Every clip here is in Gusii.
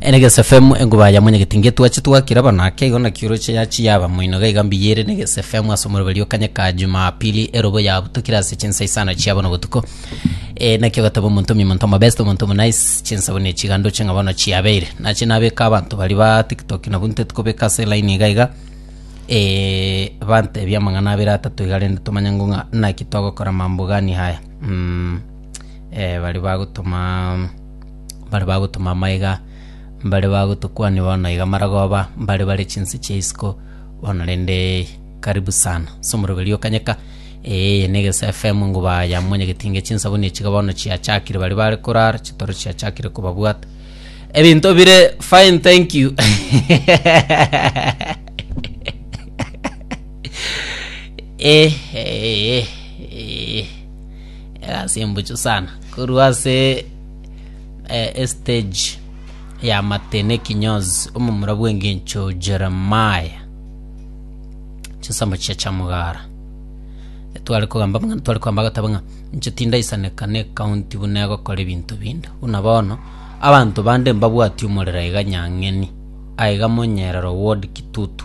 Enegesa FM engoba ya mwenyegeti ngetwache twakira bana ake igo na kioroche ya chiyaba moino ga iga mbiyere negesa FM ase omoroberi okanye ka Jumapili erobo ya butokire ase chinsa isano chiabo no botuko e nakio gatabo omonto mi monto mabest omonto mu nice chinsa bune chigando chinga bono chiabeire nache nabeka abanto bari ba TikTok na bunte tukobeka ase line iga iga e bante bia mang'ana abere atato iga rende tomanye ng'o ng'a naki twagokora mambo gani haya mm. eh, baria bagotoma baria bagotoma amaiga mbaria bagotokwania bono iga maragoba mbaria bare chinse chia isiko bono rende karibu sana ase omoroberi o kanyeka eeh na egese FM ngoba ya monyageti inga chinsa buna echi iga bono chiachakire baria bare korara chitoro chiachakire kobabwata ebinto bire fine thank you eh, eh, eh. egasi embuchu sana korwa ase eh, estage ya matene ekinyozi omomura bw'engencho jeremaya chinsemo chiria chia mogara etware kogamba buna tware kogamba agatabo ng'a inche tindaisaneka na ekaunti buna egokora ebinto binde buna bono abanto bande mbabwati omorero iga nyang'eni aiga monyerero ward kitutu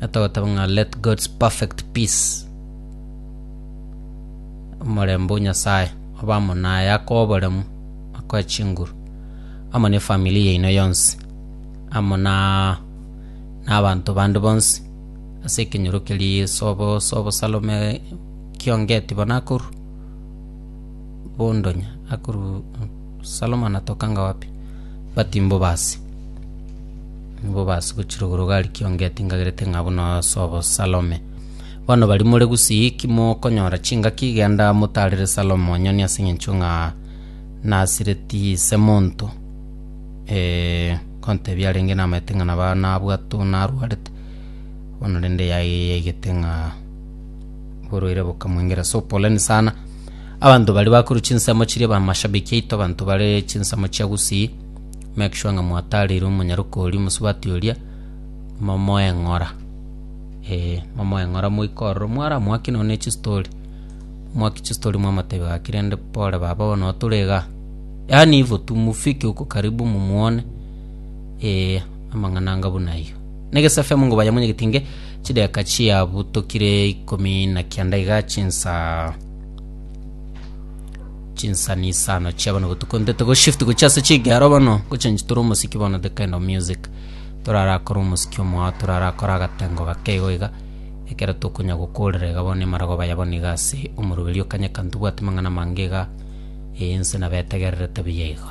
atagoteba ng'a let God's perfect peace, omorembe o Nyasae obe amo naye, akoe oboremu, akoe chinguru amo ne family yaino yonsi, amo na nabanto bande bonsi ase ekenyoro keria ase obo ase obosalome kiongeti bono akorwa, bondonya akorwa. Salomo anatoka anga wapi? But mbo basi. Mbo basi gochira igoro gari kiongeti ngagerete ng'a buna ase obosalome. Bono bari more gusii ki mokonyora chingaki genda motarere Salomo onyoni ase eng'encho ng'a nasireti ise monto. Eh, nkontebia arenge namaete ng'a naba nabwate oo narwarete. Bono rende yaye yaigete ng'a borwaire bokamoengera. So poleni sana. Abanto baria bakorwa chinsemo chiria bamashabiki aito abanto bare chinsemo chia gusii make sure ng'a mwataarire omonyaroke oria omosubati oria momoe eng'ora ee momoe eng'ora moike ororo mwaramoake nonye ne chistory mwaki chistory mwamotebia gaki rende pole baba bono oo tore igaa yaani ivo tu mufike huko karibu mumuone ee amang'ana anga buna ayio. Negesu FM ngoba yamonyegetinge chidakika chiabutokire ikomi na kianda igaa chinsaa chinsanisano chia bono botuko ntete go shift gochia ase chigero bono gochange tore omosiki bono the kind of music torarakore omosiki omoao torarakore agatengo gake igo iga ekero tokonya gokorera iga bono emaragoba ya bono iga ase omorweri o kanya ka ntobwati mang'ana amange iga, eh, inse nabo etegererete buya igo.